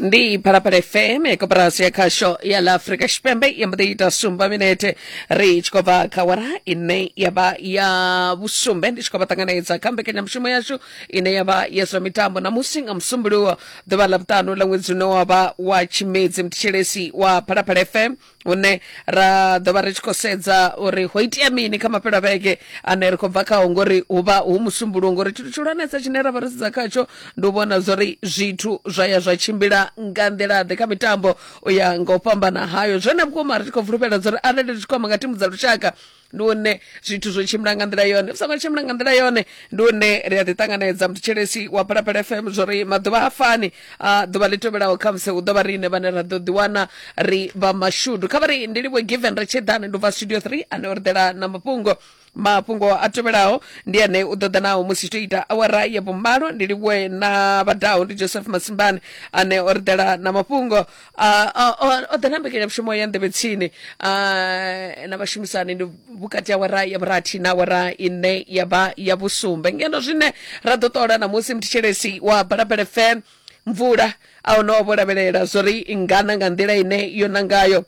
ndi phalaphala fm koperasi ya khasho ya la africa tshipembe i mbo ḓi ita sumba minete ri tshi khou bva kha wara ine ya vha ya vhusumbe ndi tshi khou vha ṱanganedza kha mbekanyamushumo yashu ine ya vha ya zwa mitambo namusi nga musumbuluwo ḓuvha ḽa vhuṱanu ḽa ṅwedzi une wa vha wa tshimedzi mthetshelesi wa phalaphala fm hune ra ḓo vha ri tshi khou sedza uri ho itea mini kha mafhelo a vhege ane ri khou bva khao ngori hu vha hu musumbuluwo ngori tshithu tshihulwanesa tshine ra vha ro sedza khatsho ndi u vhona zwori zwithu zwa ya zwa tshimbila nga nḓilaḓe kha mitambo u ya nga u fhambana hayo zwone vhukuma ri tshi khou fulufhela zwori arali ri tshi khou amba nga thimu dza lushaka ndi hune zwithu zwo tshimbila nga nḓila yone zwi songo tshimbila nga nḓila yone ndi hune ri a ḓi ṱanganedza muthethelesi wa phalaphala fm zwo ri maḓuvha ha fani a ḓuvha ḽi tevhelaho kha musi hu ḓo vha riine vhane ra ḓo ḓiwana ri vha mashudu kha vha ri ndi livho given ri tshi ḓani ndi u bva studio 3 ane o ri ḓela na mafhungo mafhungo a tevhelaho ndi ane u ḓoḓa naho musi to ita awara ya vhumalo ndi livhuwe na vhadaho ndi joseph masimbani ane o ri ḓela na mafhungo Ah, ah, ah, o ḓa na mbekanyamushumo ya nḓevhe tsini ah, na vhashumisani ndi vhukati ha wara ya vhurathi na wara ine ya vha ya vhusumbe ngeno zwine ra ḓo ṱola namusi muthetshelesi wa balabele fm mvula a hone o vho lavhelela zwo ri ngana nga nḓila ine yo nangayo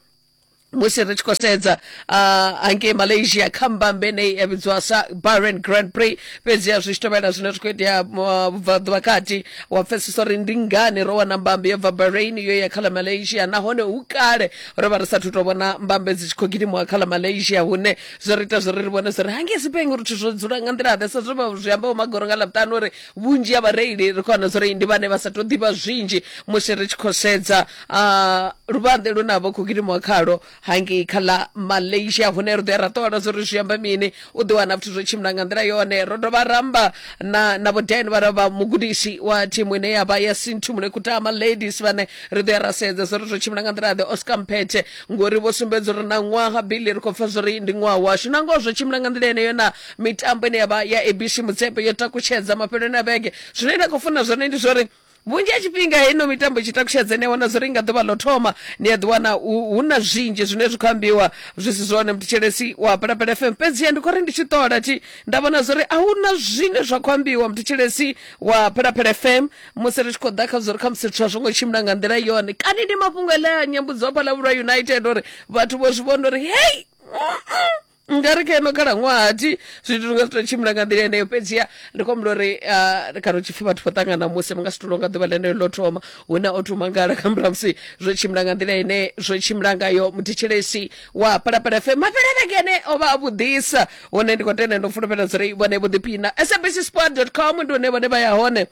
musi ri tshi khou sedza uh, hangei malaysia kha mbambe nei ya vhidziwa sa bahrain grand prix fhedziha zwi tshi tovhela zwine zwi khou itea uh, vhubvaḓuvha kati wa pfesesa uri ndi ngani ro wana mbambe yo bva bahrain yo ya kha ḽa malaysia nahone hu kale ro vha ri sathu tou vhona mbambe dzi tshi khou gidimiwa kha ḽa malaysia hune zwo ri ita zwo ri ri vhone zwo ri hangei sipeng uri zwithu zwo dzula nga nḓila ḓe sa zwo zwi ambaho magoro nga ḽavhuṱanu uri vhunzhi ha vhareili ri khou wana zwa uri ndi vhane vha sa tou ḓivha zwinzhi musi ri tshi khou sedza ah, luvhanḓe lune a vha khou gidimiwa khalo hangei kha ḽa malaysia hune ri ḓo ya ra ṱola zwa uri zwi amba mini u ḓo wana zwithu zwo tshimbila nga nḓila yone ro dovha ramba na na vhodeni vha vha mugudisi wa thimu ine ya vha ya sintu mune kutama ladies vhane ri ḓo ya ra sedza zwa uri zwo tshimbila nga nḓila ḓe oscar mphethe ngori vho sumbedza uri na ṅwaha bili ri khou pfa zwa uri ndi ṅwaha washu na ngoho zwo tshimbila nga nḓila yeneyo na mitambo ine yavha ya abc mutsepe yo takutshedza mafheloni a vhege zwine nda khou funa zwone ndi zwori vhunzhi ha tshifhinga heino mitambo i tshi takutshedza ni a wana zwori nga ḓuvha ḽo thoma ni a ḓi wana hu hu na zwinzhi zwine zwi khou ambiwa zwi si zwone mthetshelesi wa palapala fm fhedziha ndi khou ri ndi tshi ṱola thi nda vhona zwori a hu na zwine zwa khou ambiwa mthetshelesi wa palapala fm musi ri tshi khou ḓa kha zwori khamusi zwithu a zwo ngo tshimbila nga nḓila yone kani ndi mafhungo ele a nyambudzo phalavhulwa united uri vhathu vho zwi vhona uri hei mm, mm. nga ri kha ino khalaṅwaha thi zwithu zwi nga si to tshimbila nga nḓila yeneyo fhedziha ndi khou humbula uri ah, ri khato tshipfi vhathu vho ṱangana musi vha nga si tulonga ḓuvha ḽeneyo ḽo thoma hu na o thoma ngala kha murahu musi zwo tshimbila nga nḓila ine zwo tshimbila ngayo muthetshelesi wa palapala fe mafhele vhege ene o vha a vhuḓisa hone ndi khou tenda ndo fulufhela zwo ri vhone vho ḓiphina sabc sport com ndi hone vhone vha ya hone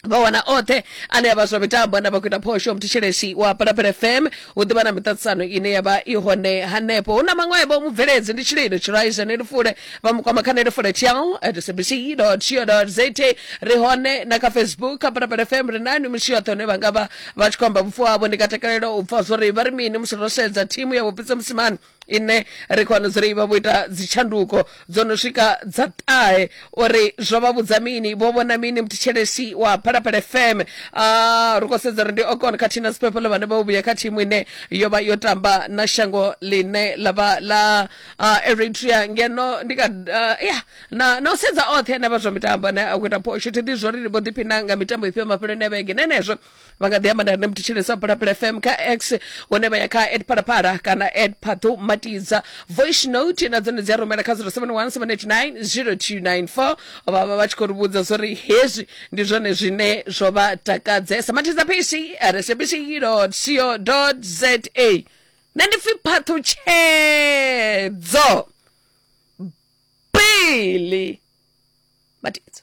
vha wana oṱhe ane a vha zwa mitambo na vha khou ita phosho muthishelesi wa palapala fm hu ḓivha na miṱaṱisano ine ya vha i hone hanefho hu na maṅwevho mubveledzi ndi tshililo tshiraiza ne lifule vha mukwama kha ne lifule tiao at sabc co za ri hone na kha facebook kha palapala fm ri nani misi yoṱhe hune vha nga vha vha tshi khou amba vhufu havho ndi nga takalela u pfa zwori vha ri mini musi ro sedza thimu ya vhupitsa musimani ine ri khou dzula ivha vho ita dzitshanduko dzo no swika dza ṱahe uri zwo vha vhudza mini vho vhona mini muthetshelesi wa phalaphala fm uh, ri khou sedza uri ndi okon khathihi na siphephelo vhane vha vhuya kha thimu ine yo vha yo tamba na shango ḽine ḽa vha ḽa uh, eritrea ngeno ndi ka uh, ya na, na u sedza oṱhe ane vha zwa mitambo ane a khou ita phosho thi ḓi zwo ri vho ḓiphina nga mitambo ifhio mafheloni a vhege nenezwo vha nga ḓi amba na rine muthetsheleso phalaphala fm kha x hune vha ya kha ed phalaphala kana ed phaṱo matidza voice note na dzone dzi a rumela kha 0717890294 vha vha vha tshi khou ri vhudza zwo ri hezwi ndi zwone zwine zwo vha takadzesa matidza phisi rsbc co za nṋe ndi pfi phaṱhutshedzo bili matidza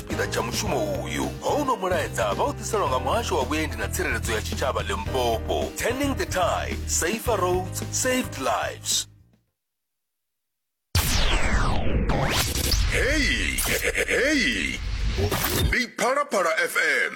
tshipiḓa tsha mushumo uyu houno mulaedza vha u ḓiselwa nga muhasho wa vhuendi na tsireledzo ya tshitshavha limpopo turning the tide safer roads saved lives heyi heyi ndi phalaphala fm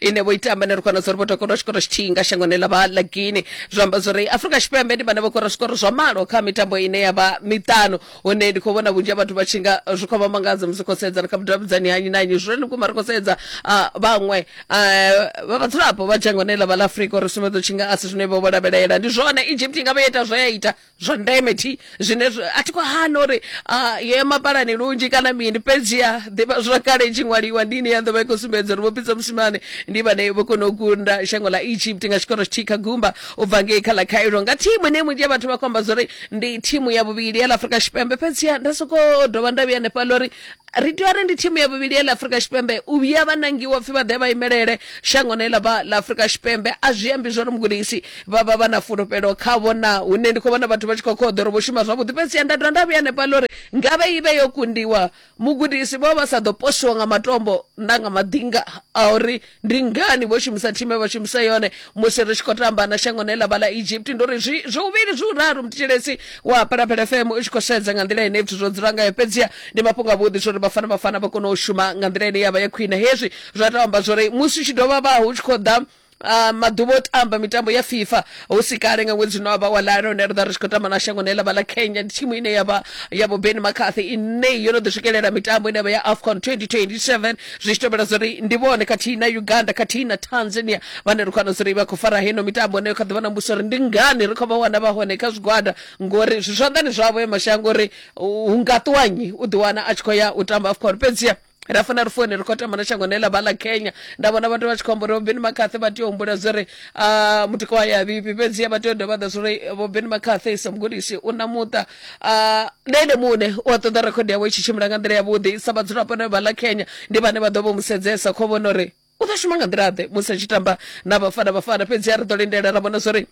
ine vho ita ambanero kana zwo ri vho takalwa tshikoro tshithihi nga shangoni ḽa vha ḽa guine zwa amba zwo ri afurika tshipembe ndi vhane vho kora zwikoro zwa malo kha mitambo ine ya vha miṱanu hune ndi khou vhona vhunzhi ha vhathu vha tshi nga zwi khou vha mangadza musi khou sedzana kha vhudavhidzani ha nnyi na nnyi zwone vhukuma ri khou sedza ah, vhaṅwe ah, vha vhadzulapo vha dzhangoni ḽa vha ḽa afurika uri sumbedza u tshi nga a si zwine vho vho lavhelela ndi zwone egypt i nga vha yo ita zwe ya ita zwa ndeme thi zwine a thi khou hana uri yo ya mapalani lunzhi kana mini fhedzi ya ḓivha zwa kale i tshi ṅwaliwa ndi ine ya ḓo vha i khou sumbedza uri vhopitsa musimane ndi vhane vho kona u kunda shango ḽa egypt nga tshikoro tshithihi kha gumba u bva ngei kha ḽa cairo nga thimu ine vhunzhi ya vhathu vha khou amba zwa uri ndi thimu ya vhuvhili ya ḽa afrika tshipembe fhedzi ya nda sokou dovha nda vhuya hanefhaḽa uri ri tea uri ndi thimu ya vhuvhili ya ḽa afurika tshipembe u vhuya vha nangiwa pfhi vha ḓe vha imelele shango ne ḽa vha ḽa afurika tshipembe a zwi ambi zwori mugudisi vha vha vha na fulufhelo khavho na hune ndi khou vhona vhathu vha tshi khou khoḓa uri vho shuma zwavhuḓi fhedzi ya nda dovha nda vhuya hanefha ḽa uri ngavhe i vhe yo kundiwa mugudisi vho vha sa ḓo posiwa nga matombo na nga maḓinga a uri ndi ngani vho shumisa thime vha shumisa yone musi ri tshi khou tamba na shango ne ḽa vha ḽa egypt ndi uri zwi zwi uvhili zwi uraru muthetshelethi wa phalaphala fm u tshi khou sedza nga nḓila ine zwithu zwo dzula ngayo fhedziha ndi mafhungo avhuḓi zwa uri vhafana vhafana vha kone u shuma nga nḓila ine ya vha ya khwine hezwi zwa tou amba zwa uri musi u tshi dovha vha hu tshi khou ḓa Uh, maḓuvha o tamba mitambo ya fifa hu si kale nga ṅwedzi no avha wa lala hone ri ḓa ri tshi khou tamba na shango ne lavha ḽa kenya ndi thimu ine yavha ya vho ben macarthy ine yo no ḓi swikelela mitambo ine yavha ya afcon 2027 zwi tshi tevhela zwauri ndi vhone khathihi na uganda khathihi na tanzania vhane ri khou wana zwauri vha khou fara heno mitambo ine kha ḓivha na mbuso uri ndi ngani ri khou vha wana vha hone kha zwigwada ngori zwi zwanḓani zwavho ya mashango uri hu nga ṱuwanyi u ḓiwana a tshi khou ya u tamba afcon fhedziha ra funa ri fone ri khou tamba na shango ne ḽa vha ḽa kenya nda vhona vhathu vha tshi khou amba uri vhobeni makhathi vha tea u humbula zwo ri ah, mutika wa ya vhifhi fhedziha vha tea u dovha ḓa zwo ri vhobeni makhathi sa mugudisi u na muṱa ah, na ene muṋe u a ṱoḓa rekhodi yawe i tshi tshimbila nga nḓila yavhuḓi sa vhadzulapo ne vha ḽa kenya ndi vhane vha ḓo vho mu sedzesa kho vhona uri u ḓo shuma nga nḓila ḓe musi a tshi tamba na vhafana vhafana fhedzi a ri ḓo lindela ra vhona zwori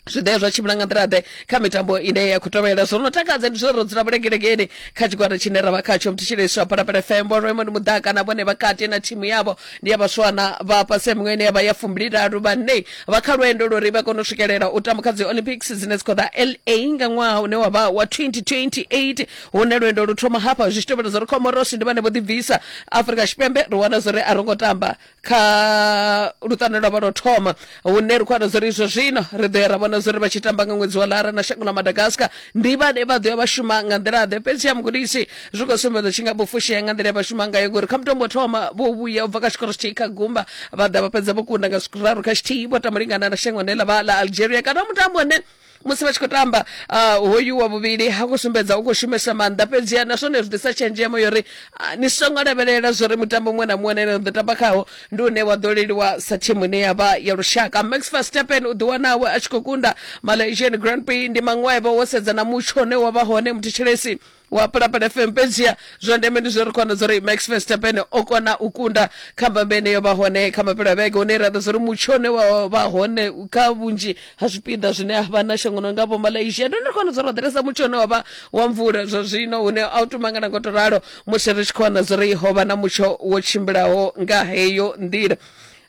zwi ḓe zwa tshimbila nga nḓila ḓe kha mitambo ine ya khou tovhela zwo no takadza ndi zwo ro dzula vhulengelegeni kha tshigwada tshine ra vha khatsho mthetsheleswa phalaphala fm vho raymond mudaka na vhone vha kati na thimu yavho ndi ya vhaswana vha fhasi ya miṅwe ine ya vha ya fumbililalu vhane vha kha lwendo lwori vha kone u swikelela u tamba kha dzi olympics dzine dzi khou ḓa la nga ṅwaha une wa vha wa 2028 hune lwendo lu thoma hafha zwi tshi tevhela zwa ri comorosi ndi vhane vho ḓibvisa afurika tshipembe ri wana zwori a ro ngo tamba kha luṱane lwa vha lwo thoma hune ri khou wana zwori izwo zwino ri ḓo ya ra vhona zwori vha tshi tamba nga ṅwedzi wa lara na shango ḽa madagascar ndi vhane vha ḓo ya vha shuma nga nḓila ḓe fhedzi ya mugudisi zwi khou sumbedza tshi nga vhufushea nga nḓila ya vha shuma ngayo ngori kha mutombo thoma vho vhuya u bva kha tshikoro tshithihi kha gumba vha ḓa vha fhedza vho kunda nga zwiraru kha tshithihi vho tamba lingana na shango ne ḽa vha ḽa algeria kana mutambo une musi vha tshi khou tamba uh, hoyu wa vhuvhili ha khou sumbedza u khou shumesa maanḓa fhedziha na zwone zwi ḓisa tshenzhemo yori uh, ni songo lavhelela zwori mutambo muṅwe na muṅwe ne na ḓo tamba khawo ndi une wa ḓo leliwa sa thimu ine ya vha ya lushaka max verstappen u ḓiwanawe a tshi khou kunda malaysian grand prix ndi maṅwevho wo sedza na mutsho une wa vha hone muthetshelesi wa pulapala fm fhedziha zwa ndeme ndi zwo ri khona zwo ri max verstappen o kona u kunda kha mbambe ine yo vha hone kha mapelo a vhege hune ra ḓa zwo ri mutsho une wa vha hone kha vhunzhi ha zwipiḓa zwine a vha na shangoni nga vho malaysia ndi ri khona zwo ri wa ḓiresa mutsho une wa vha wa mvula zwa zwino hune a u tumangana ngo to ralo musi ri tshi khona zwo ri ho vha na mutsho wo tshimbilaho nga heyo nḓila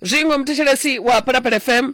zwiṅwe muthetshelesi wa pulapala fm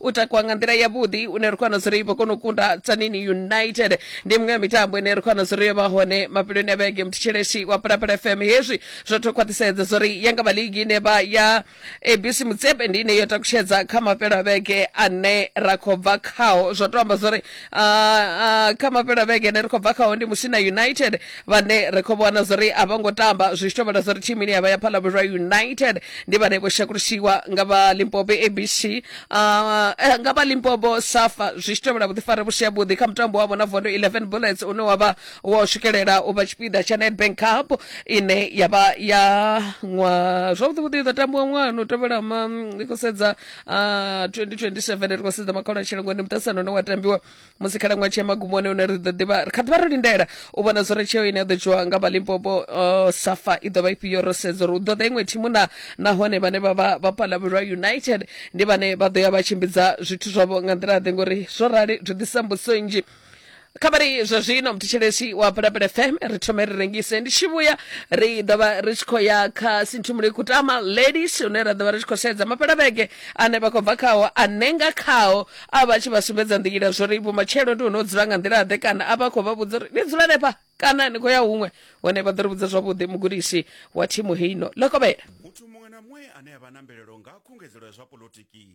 u takuwa nga nḓila yavhuḓi une ri khou wana zuri vho kona u kunda tsanini united ndi miṅwe ya mitambo ine ri khou wana zuri yo vha hone mafheloni a vhege muthetshelesi wa pulapula fm hezwi zwo to khwaṱhisedza zuri ya nga vha ligi ine vha ya abc mutsepe ndi ine yo takutshedza kha mafhelo a vhege ane ra khou bva khao zwo to amba zuri Ah, ah, kha mafhelo a vhege ine ri khou bva khaho ndi musina united vhane ri khou vhona zwo ri a vho ngo tamba zwi tshi tovhela zwo ri thimu ine ya vha ya phalabulwa united ndi vhane vho shakulisiwa nga vha limpopo abc ah, eh, nga vha limpopo safa zwi tshi tovhela vhuḓifari vhu si havhuḓi kha mutambo wavho na vondo 11 bullets une wa vha wo swikelela u vha tshipiḓa tsha nedbank cup ine ya vha ya ṅwa zwavhuḓivhuḓi i ḓo tambiwa ṅwana u tevhela ma ndi khou sedza Uh, 2027 ri khou sedza makhono a tshilango ndi muṱasano une wa tambiwa musi khalaṅwaha tshi ya magumoni une ri ḓo ḓivha ri kha ḓivha ro lindela u vhona zwo ri tsheo ine ya ḓo dzhiwa nga vhalimpopo uh, safa i ḓo vha ifhio ro sedza uri u ḓo ḓa iṅwe thimu na nahone vhane vha vha vha palavhelwa united ndi vhane vha ḓo ya vha tshimbidza zwithu zwavho nga nḓila ḓe ngori zwo rali zwi ḓisa mbudziso nnzhi kha vha ri zwa zwino mthetshelesi wa pulapula fm ri thome ri rengise ndi tshi vhuya ri ḓo vha ri tshi khou ya kha sinthumule kutama ladies hune ra ḓo vha ri tshi khou sedza mapelavhege ane vha khou bva khao ane nga khao a vha tshi vha sumbedza nḓila zwo ri vhumatshelo ndi hune u dzula nga nḓila-ḓe kana a vha khou vha vhudza uri ni dzula nefha kana ni khou ya huṅwe hone vha ḓo ri vhudza zwavhuḓi mugudisi wa thimu heino lokovhela muthu muṅwe na muṅwe ane a vha na mvelelo nga khungedzelo ya zwa polotiki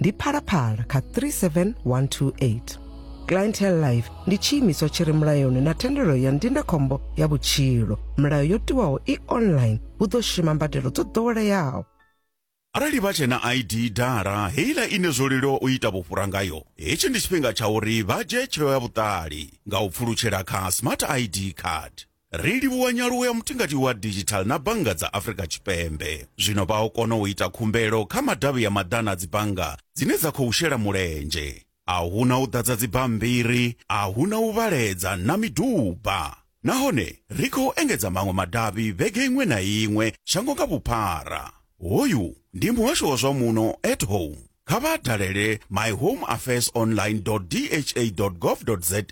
ndi phalaphala kha 37128 clientele life ndi tshiimiswa tshi re mulayoni na thendelo ya ndindakhombo ya vhutshilo milayo yo tiwaho i online hu ḓo shuma mbadelo dzo ḓoweleaho arali vha tshe na id dala heiḽa ine zwo leluwa u ita vhufhura ngayo hetshi ndi tshifhinga tsha uri vha dzhie tsheo ya vhuṱali nga u pfulutshela kha smart id card Ri livhuwa nyaluwo ya mutingati wa digital na bannga dza Afrika Tshipembe. Zwino vha o kona u ita khumbelo kha madavhi ya maḓana a dzibannga dzine dza khou shela mulenzhe. A hu na u ḓadza dzibammbiri, a hu na u vhaledza na miduba. Nahone ri khou engedza maṅwe madavhi vhege iṅwe na iṅwe shango nga vhuphara. Hoyu ndi muhasho wa zwa muno at home. Kha vha dalele myhomeaffairsonline.dha.gov.za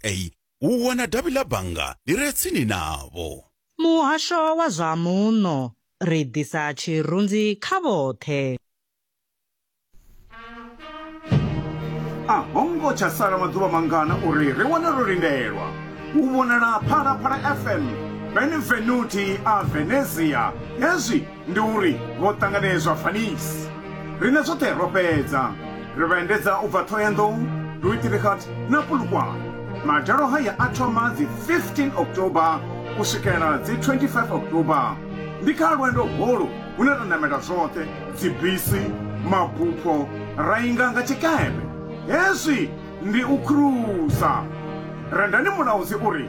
u wana davhi ḽa bannga ḽi re tsini navho. Muhasho wa zwa Muno, Ri ḓisa tshirunzi kha vhoṱhe. A ho ngo tsha sala maḓuvha mangana uri ri wane ro lindelwa u vhonala Phalaphala FM, Benvenuti a Venezia, hezwi. Ndi uri vho ṱanganedzwa Venice. Riṋe zwoṱhe ro fhedza. Ri vha endedza u bva Thohoyandou, Duitrichard na Polokwane. Madalo haya a thoma dzi 15 October u swikela dzi 25 October. Ndi kha lwendo holu hune ra ṋamela zwoṱhe, dzibisi, mabupho, ra inga nga tshikepe. Hezwi ndi u khurusa. Rendani Mulaudzi u ri,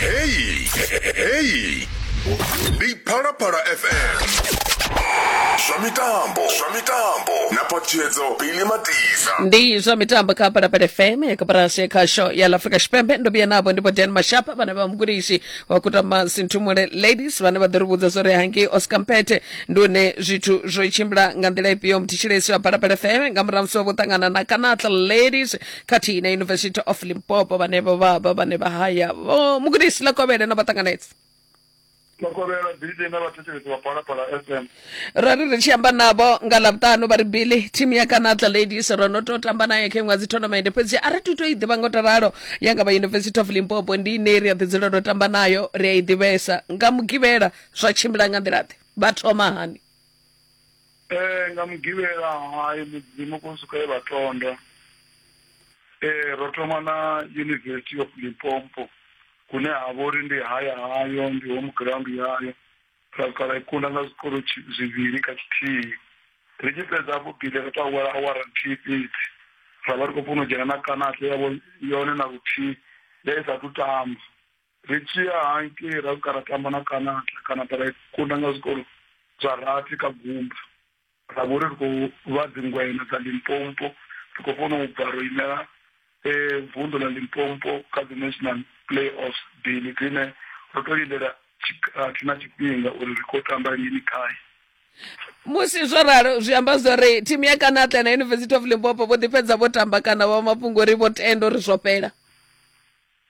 Hey, hey. Ndi Phalaphala FM. Zwa mitambo, zwa mitambo. Na patshedzo Billy Matiza. ndi zwa mitambo kha palapala fm yakaparasi kha show ya lafrika tshipembe ndo vhuya navho ndipo dan mashapa vhane vha mugudisi wa kutama sinthumule ladies vhane vha ḓo ri vhudza zwo ri hangei oscar mpete ndi une zwithu zwo tshimbila nga nḓila ifhio mthitshilesi wa palapala fm nga murahu musi wa vho ṱangana na kanatla ladies khathihi na university of limpopo vhane vho vha vha vhane vha haya Vho mugudisi ḽa kovhele no vha ṱanganedza makovhela bidi na vhathetshelesi vha phalaphala fm ra ri ri tshi amba navho nga ḽavhuṱanu vha ri bili thimu ya kanatla ladies ro no tou tamba nayo kha iṅwe dzi tournament fhedzi a ri tu tou i ḓivha ngo to ralo ya nga vha university of limpopo ndi ine ri a ḓi dzula ro tamba nayo ri a i ḓivhesa nga mugivhela zwa tshimbila nga nḓila ḓe vha thoma hani Ee, nga mugivhela hai mudzimu ko suka e vha tonda ee ro thoma na university of limpopo kune ha vha uri ndi haya hayo ndi home ground yayo ra swika ra i kunda nga zwikolo tshi- zwivhili kha tshithihi ri tshi fhedza hafho bile ro to awela awara nthihi fhedzi ra vha ri khou funa u dzhena na kanate yavho yone na luthihi ya i sathu tamba ri tshi ya hangei ra swika ra tamba na kanata kanata ra kunda nga zwikolo zwa rathi kha gumba ra vhori ri khou vha dzingwena dza limpompo ri khou funa u bva ro imela um vunḓu ḽa limpompo kha dzi national play offs bili dzine ro to lindela tshikhathi na tshifhinga uri ri khou tamba lini khae musi zwo ralo zwi amba zwori thimu ya kanatla na university of limpopo vho ḓi fhedza vho tamba kana vha mafhungo uri vho tenda uri zwo fhela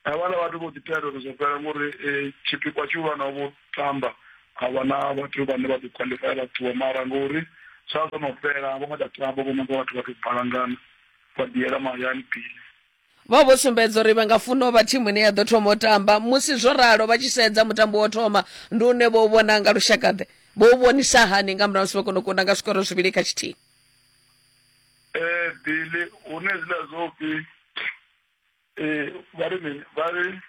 Havhala vhathu vho ḓi tea dovha zwa fhela ngori eh, tshipikwa tshihulwane vho tamba a vha na vhathu vhane vha ḓo khwaḽifaya vha ṱuwa mara ngori zwa zwo no fhela a vho ngo tsha tamba vho nanga vhathu vha tou balangana vha ḓiyela mahayani pili Vho vho sumbedza uri vha nga funa u vha thimu ine ya ḓo thoma u tamba musi zwo ralo vha tshi sedza mutambo wo thoma ndi une vho u vhona nga lushakaḓe vho u vhonisa hani nga murahu musi vho kona u kunda nga zwikoro zwivhili kha tshithihi eh bili hune zwiḽa zwo pfi Ee, vha ri mini vha ri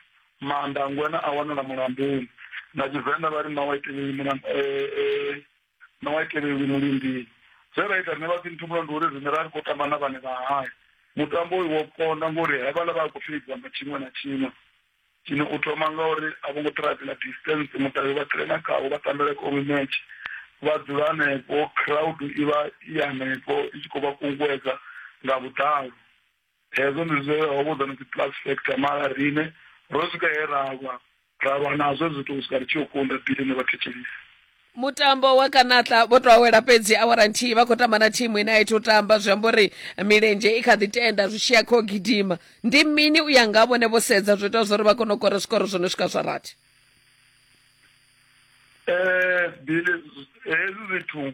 maanḓa a ngwena a wanala mulamboni na tshivenḓa vha ri ṋawa i tevheli mulambo eh, eh, ṋawa i tevheli mulindini zwe ra ita riṋe vha tsinthumulo ndi uri riṋe ra ri khou tamba na vhane vha haya mutambo uyu wo konda ngori hevhala vha a khou fheidzwa nga tshiṅwe na tshiṅwe tshine u thoma nga uri a vho ngo ṱhirafhela distance mutavhi vha tirena khawo vha tambela komi match vha dzula hanefho crowd i vha i hanefho i tshi khou vha kunguwedza nga vhuḓalo hezwo ndi zwe ho vhudzwa ni plus factor mara rine ro swika he ra lwa ra lwa nazwo zwithu u swika ri tshi yo kunda bili ne vhathetshelisi mutambo wa kanatla vho to awela fhedzi awara nthihi vha khou tamba na thimu ine a itha u tamba zwi amba uri milenzhe i kha ḓi tenda zwi tshiya kha u gidima ndi mini u ya nga vhone vho sedza zwo ita zwori vha kone u kora zwikoro zwo no swika zwa rathi um bili hezwi zwithu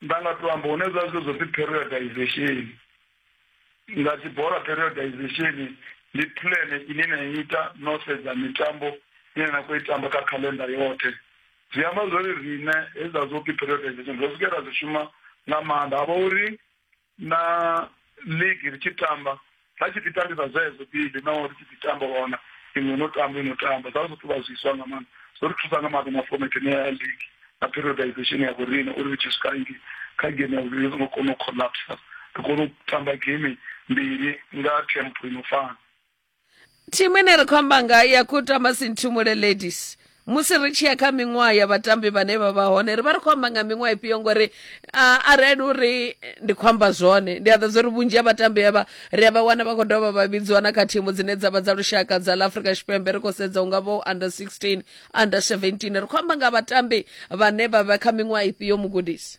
nda nga to amba hune zwa zwi zwo pfi periodization nga dzi bola periodization ndi plan ine na ita no sedza mitambo ine na khou i tamba kha khalenda yoṱhe zwi amba zwori riṋe hezwiḽa zwo pfi periodization ro swikela zwi shuma nga maanḓa ha vha uri na ligi ri tshi tamba ra tshi ḓi tambisa zwezo bili na ri tshi ḓi tamba wana iṅwe no tamba ino tamba zwa zwi ṱuvha zwiswa nga maanḓa zwo ri thusa nga maanḓa na format ine ya ligi na periodization ya vhorine uri ri tshi swika ngi kha game ya vhuvhili ri songo kona u collapsa ri kone u tamba game mbili nga tempo ino fana thimu ine ri khou amba nga ya kutama sinthumule ladies musi ri tshi ya kha miṅwaha ya vhatambi vhane vha vha hone ri vha ri khou amba nga miṅwaha ifhio ngori arali uri ndi khou amba zwone ndi a ḓa zwa uri vhunzhi ha vhatambi avha ri a vha wana vha khou dovha vha vhidziwa na kha thimu dzine dza vha dza lushaka dza la afrika tshipembe ri khou sedza unga vho under 16 under 17 ri khou amba nga vhatambi vhane vha vha kha miṅwaha ifhio mugudisi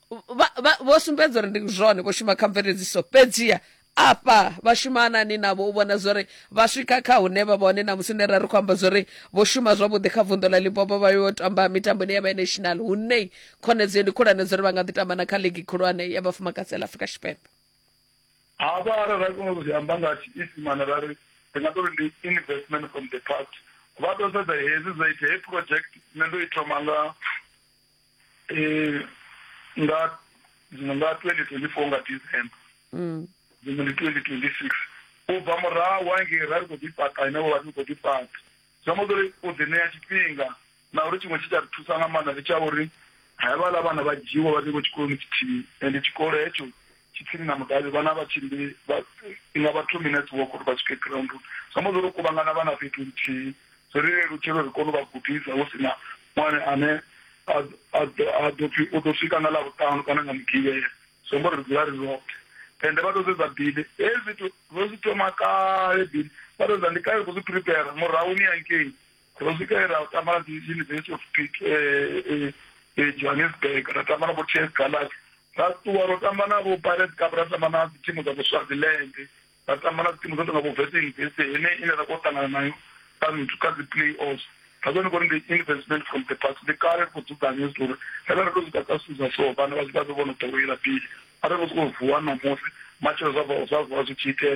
vho sumbedza uri ndi zwone vho shuma kha mveledziso fhedziha afha vha shuma nani navho u vhona zwori vha swika kha hune vha vhone na musi nera ri khou amba zwori vho shuma zwavhuḓi kha vunḓu ḽa limpopo vha yo tamba mitamboni ya binational hune khonedzeo ndi khulwane zwori vha nga ḓi tamba na kha ligi khulwane ya vhafumakadzi ḽa afurika tshipembe hafha arali ra kona u zwi amba nga tshiisimane ra ri ri nga tori ndi investment from the past vha ḓo sedza hezwi zwo ita he project nṋe ndo i thoma nga eh nga dziṅwe nga 2024 nga december mm. dziṅwe ndi 2026 u bva murahu wangei ra ri khou ḓifhaṱa ine vha ri khou ḓifhaṱa zwi amba uri u ḓi ṋea tshifhinga na uri tshiṅwe tshi tsha ri thusa nga maanḓa ndi tsha uri havhala vhana vha dzhiwa vha tshi khou tshikoloni tshithihi ende tshikolo hetsho tshitsini na mudavhi vhana vha tshimbili vha inga vha two minutes walk uri vha swike grounduni zwi amba zwori u kuvhangana vhana fhethu nthihi zwi ri lelutshela uri kone u vha gudisa hu si na ṅwana ane a a ḓo pfhi u ḓo swika nga ḽavhuṱanu kana nga mugivhela zwi amba uri ri dzula ri roṱhe ende vha to sedza bili hezwi zwithu ro zwi thoma kale bili vha to sedza ndi kale ri khou zwi prepare murahu ni yankei ro swika ra tamba dzi university of creek eh, eh, johannesburg ra tamba na vho ts galaxy ra ṱuwa ro tamba na vho pirates cup ra tamba na dzithimu dza voswaziland ra tamba na dzithimu dzo tonga vho vese university ine ine ra kho ṱangana nayo kha nthu kha dzi-play offs ra kone kori ndi investment from the past ndi kale ri khou dzudzanya zwi uri rena ri to zwi ḓa zwithu zwa so vhana vha zwi vha vhe vho no ḓowela pili a ri khou sokou vuwa ṋamusi matshelo zwa zwa vuwa zwi tshi itea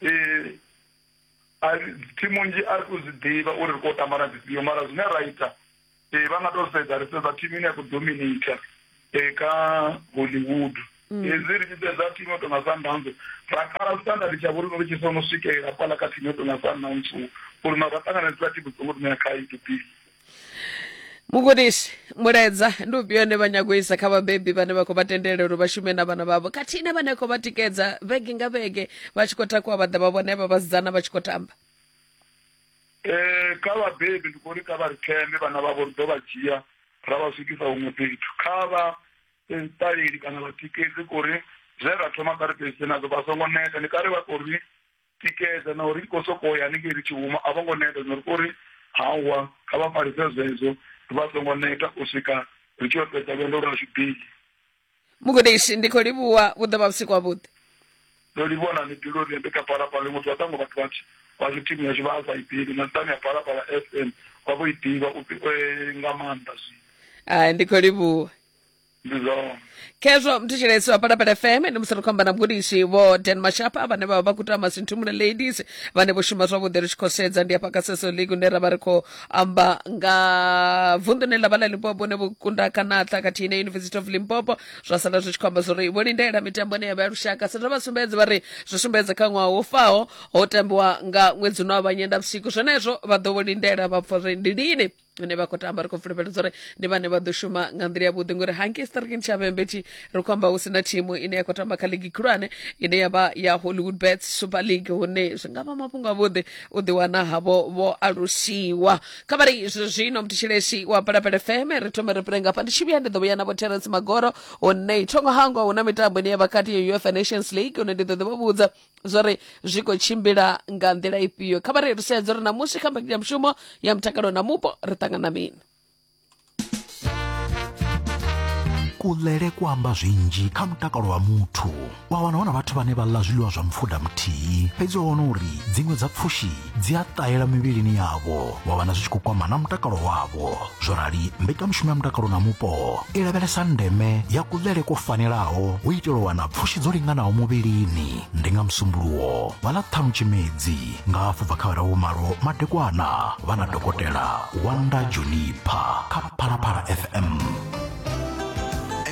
eh, thimu nzhi a ri to zwi ḓivha uri ri khou tamba na dzifhio mara zwine ra ita um vha nga to sedza ri sedza thimu ine ya khou dominata um kha hollywood mm. hezwi ri tshi sedza thimu yo tonga sundowns ra kala standard tsha vhori ri tshi sono swikelela fhala kha thimu yo tonga sundowns uri na ra ṱanganedzisa thimu songo ri ṋea khaedu pili mugudisi mulaedza ndi ufhio une vha nyago u isa kha vhabebi vhane vha khou vha tendela uri vha shume na vhana vhavho khathihi na vhane khou vha tikedza vhege nga vhege vha tshi khou takuwa vha ḓa vha vhona vha vhasidzana vha tshi khou tamba um kha vhabebi ndi khou ri kha vha ri thembe vhana vhavho ri ḓo vha dzhia ra vha swikisa huṅwe fhethu kha vha ṱaleli kana vhatikedzi kori zwe ra thoma kha ri fhedzise nazwo vha songo neta ndi kha ri vha kori tikedza na uri ko sokou ya hanengei ri tshi huma a vho ngo neta nori ko ri hawa kha vha falise zwedzo vha songo neta u swika ri tshi yo fhedza lwendo lwashu bili mugudisi ndi khou livhuwa vhu ḓo vha vhusiku havhuḓi ndo livhuwa na mibilu ri ndi kha phalaphala iṅwe ḓuvha ṱhango vhathu vhatshi vhashu thimu yashu vha a sa i ḓivhi na nṱhani ya phalaphala f m vha vho i ḓivha u- eh, nga maanḓa zwino Ah, ndi khou livhuwa ndi zwone khezwo mthetshelesi wa palapala fm ndi musi ri khou amba na mgudisi vho dan mashapa vhane vha vha vha khou tamba sinthumule ladies vhane vho shuma zwavhuḓi ri tshi khou sedza ndi hafha kha seso league hune ra vha ri khou amba nga vunḓune ḽa vha ḽa limpopo hune vho kunda kanatla khathihi na university of limpopo zwa sala zwi tshi khou amba zwori vho lindela mitambo ine ya vha ya lushaka sa vha sumbedze vha ri zwi sumbedze kha ṅwaha wo faho ho tambiwa nga ṅwedzi uno wa vhanyenda vhusiku zwenezwo vha ḓo vho lindela vha pfa uri ndi lini vhane vha khou tamba ri khou fulufhedza uri ndi vhane vha ḓo shuma nga nḓila yavhuḓi ngori hanke starkin tshavhembe tshi ri khou amba hu si na thimu ine ya khou tamba kha ligi khulwane ine ya vha ya hollywood bets super league hune zwi nga vha mafhungo avhuḓi u ḓiwana havho vho alusiwa kha vha ri zwi zwino mutshilesi wa palapele feme ri thome ri pele ngafha ndi tshi vhuya ndi ḓo vhuya na vho terence magoro hune thongo hangwa hu na mitambo ine ya vha kati ya uefa nations league hune ndi ḓo ḓi vha vhudza zwori zwi khou tshimbila nga nḓila ifhio kha vha ri ri sedze uri namusi kha mbekanyamushumo ya mutakalo na mupo ri ṱangana mini kuḽele ku amba zwinzhi kha mutakalo wa muthu wa wana hu na vhathu vhane vha ḽa zwiḽiwa zwa mupfuda muthihi fhedzi ho wana uri dziṅwe dza pfushi dzi a ṱahela mivhilini yavho wa vhana zwi tshi khou kwama na mutakalo wavho zwo rali mbekanyamushumo ya mutakalo na mupo i lavhelesa ndeme ya kuḽele kwo fanelaho u itela u wana pfushi dzo linganaho muvhilini ndi nga musumbuluwo vha ḽa ṱhanu tshimedzi nga hafhu bva kha vharahu malo madekwana vha na dokotela wanda junipa kha phalaphala fm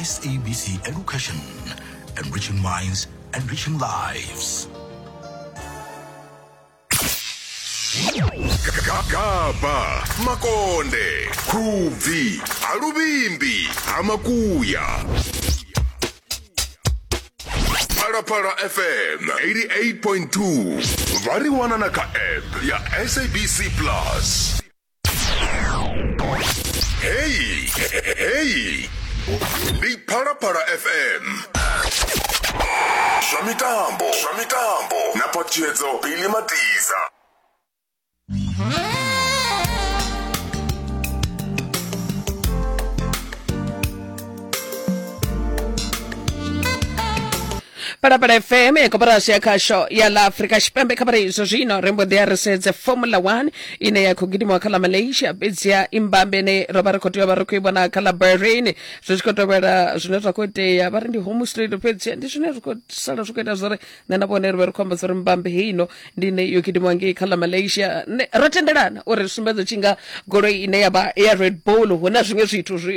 SABC Education, enriching minds, enriching lives. gagaba makonde khubvi haluvimbi hamakuya phalaphala fm 88.2 vha ri wana na kha app ya sabc plus Hey, hey. Ndi Phalaphala FM. Zwa mitambo, zwa mitambo na phatiyedzo Billy Matiza. palapala fm ya koporasi ya khasho ya la afrika tshipembe kha phala izwo zwino ri mbo ḓi a ri sedze formula 1 ine ya khou gidimiwa kha ḽa malaysia fhedziha imbambe ine ro vha ri khou tea vha ri khou i vhona kha ḽa bahrain zwi tshi khou tovhela zwine zwa khou itea vha ri ndi home straight fhedziha ndi zwine zwi khou sala zwi khou ita zwori nṋe na vhone ri vhe ri khou amba zwori mbambe heino ndi ine yo gidimiwa ngei kha ḽa malaysia Nṋe- ro tendelana uri ri sumbedze tshi nga goloi ine ya vha ya red bull hu na zwiṅwe zwithu zwi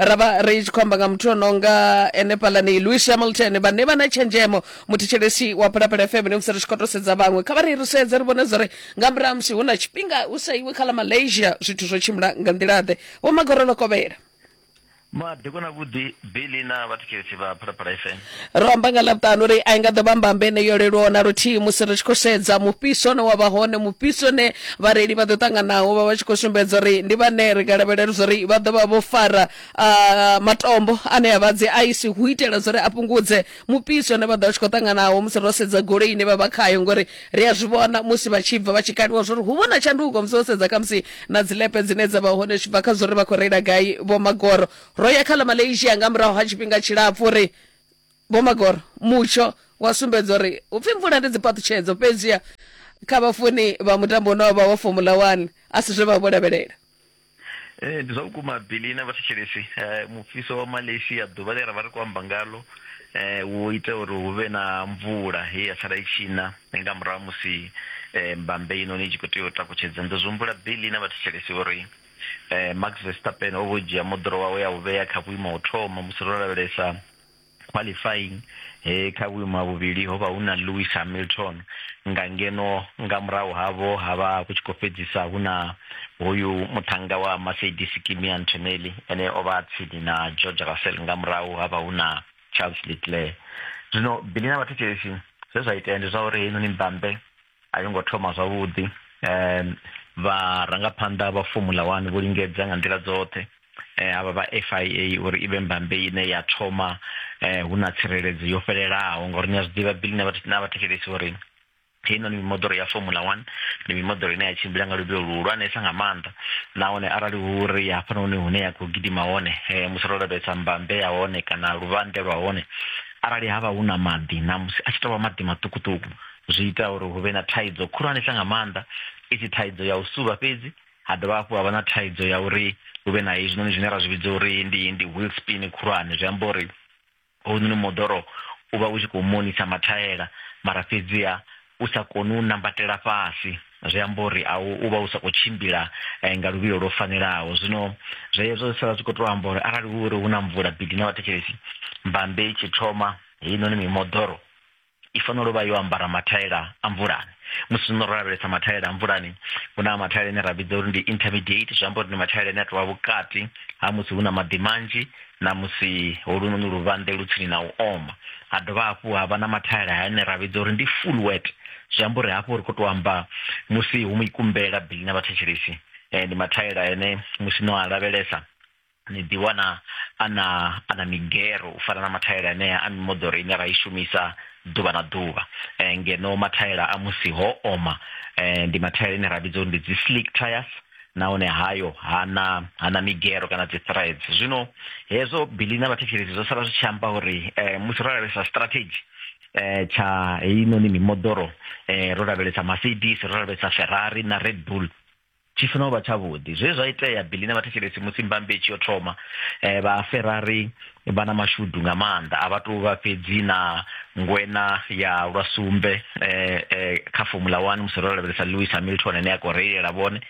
ra vha ri tshi khou amba nga muthu o nonga ene palani louis hamilton vhane vha na tshenzhemo muthetshelesi wa phalaphala fm ne musi ri tshi khou to sedza vhaṅwe kha vha ri ri sedze ri vhone zwori nga murahu ha musi hu na tshifhinga hu sa iwe kha ḽa malaysia zwithu zwo tshimbila nga nḓila-ḓe vho magorolo kovhela madekwana vhuḓi bili na vhathetshelesi vha phalaphala fm ro amba nga ḽavhuṱanu uri a i nga ḓo vha mbambe ine yo leluwaho na luthihi musi ri tshi khou sedza mufhiso une wa vha hone mufhiso une vhareili vha ḓo ṱanganaho vha vha tshi khou sumbedza uri ndi vhane ri nga lavhelela zwa uri vha ḓo vha vho fara ah, matombo ane a vha dzi aisi hu itela zwa uri a fhungudze mufhiso une vha ḓo vha tshi khou ṱanganaho musi ro sedza goloi ine vha vha khayo ngori ri a zwi vhona musi vha tshi bva vha tshi kaliwa zwa uri hu vho na tshanduko musi wo sedza khamusi na dzilepe dzine dza vha hone zwi tshi bva kha zwa uri vha khou reila gai vho magoro ro ya kha ḽa malaysia nga murahu ha tshifhinga tshilapfu ri vho magoro mutsho wa sumbedza uri upfi mvula ndi dzipaṱutshedzo fhedziha kha vhafuni vha mutambo une wavha wa formula 1 a si zwe vha vho lavhelela Eh, ndi zwa vhukuma billy na vhathetshelesi eh, mufhiso wa malaysia ḓuvha ḽe ra vha ri khou amba ngalo eh, wo ita uri hu vhe na mvula he ya sala i tshina nga murahu ha musi eh, mbambe inoni i tshi khou tea u takutshedza ndo zwi humbula billy na vhathetshelesi uri Max Verstappen o vho dzhia moḓoro wawe a u vhea kha vhuimo ha u thoma musi ro lavhelesa qualifying he kha vhuimo ha vhuvhili ho vha hu na Lewis Hamilton nga ngeno nga murahu havho ha vha hu tshi khou fhedzisa hu na hoyu muṱhannga wa Mercedes Kimi Antonelli ene o vha tsini na George Russell nga murahu ha vha hu na Charles Leclerc. Zwino Billy na vhathetshelesi zwe zwa itea ndi zwa uri heinoni mbambe a yo ngo thoma zwavhuḓi um vharangaphanḓa vha fomula one vho lingedza nga nḓila dzoṱhe um havha vha f i a uri i vhe mbambe ine ya thoma um hu na tsireledzo yo fhelelaho ngauri ni a zwi ḓivha bili na vhathetshelesi uri heinoni mimoḓoro ya formula one ndi mimoḓoro ine ya tshimbila nga luvhilo luhulwanesa nga maanḓa nahone arali hu ri hafhanoni hune ya khou gidima hone um musi ro lavhelesa mbambe ya hone kana luvhanḓe lwa hone arali ha vha hu na maḓi na musi a tshi tovha maḓi maṱukuṱuku zwi ita uri hu vhe na thaidzo khulwanesa nga maanḓa i si thaidzo ya u suvha fhedzi ha dovha hafhu ha vha na thaidzo ya uri hu vhe na hezwinoni zwine ra zwi vhidza uri ndi ndi wheel spin khulwane zwi amba uri hounoni moḓoro u vha u tshi khou monisa mathaela mara fhedziha u sa koni u nambatela fhasi zwi amba uri a u vha u sa khou tshimbila eh, nga luvhilo lwo fanelaho zwino zwezwo zwi sala zwi khou tou amba uri arali hu uri hu na mvula bidi na vhathetshelesi mbambe i tshi thoma heinoni mimoḓoro i fanela u vha yo ambara mathaela a mvulani musi no ro lavhelesa mathaela a mvulani hu na mathaela ane ra vhidza uri ndi intermediate zwi amba uri ndi mathaela ane a tovha vhukati ha musi hu na maḓi manzhi na musi holunoni luvhanḓe lu tsini na u oma ha dovha hafhu ha vha na mathaela ane ra vhidza uri ndi full wet zwi amba uri hafho ri khou tou amba musi hu mikumbela bili na vhathetshelesi um ndi mathaela ane musi no a lavhelesa ni ḓiwana a na a na migero u fana na mathaela anea a mimoḓoro ine ra i shumisa ḓuvha na ḓuvha eh, ngeno mathaela a musi ho oma eh, ndi mathaela ine ra vhidza uri ndi dzi slick tires nahone hayo hana hana migero kana dzi threads zwino hezwo bili na vhathetshelesi zwo sala zwi tshi amba uri eh, musi ro lavhelesa strategy eh tsha heinoni mimoḓoro eh ro lavhelesa Mercedes ro lavhelesa Ferrari na Red Bull Tshi funa u vha tshavhuḓi. Zwe zwa itea Billy na vhathetshelesi musi mbambe i tshi yo thoma, eh, vha Ferrari vha na mashudu nga maanḓa. A vha tou vha fhedzi na ngwena ya lwa sumbe eh, eh, kha Formula 1 musi ro lavhelesa Lewis Hamilton ane a khou reilela vhone.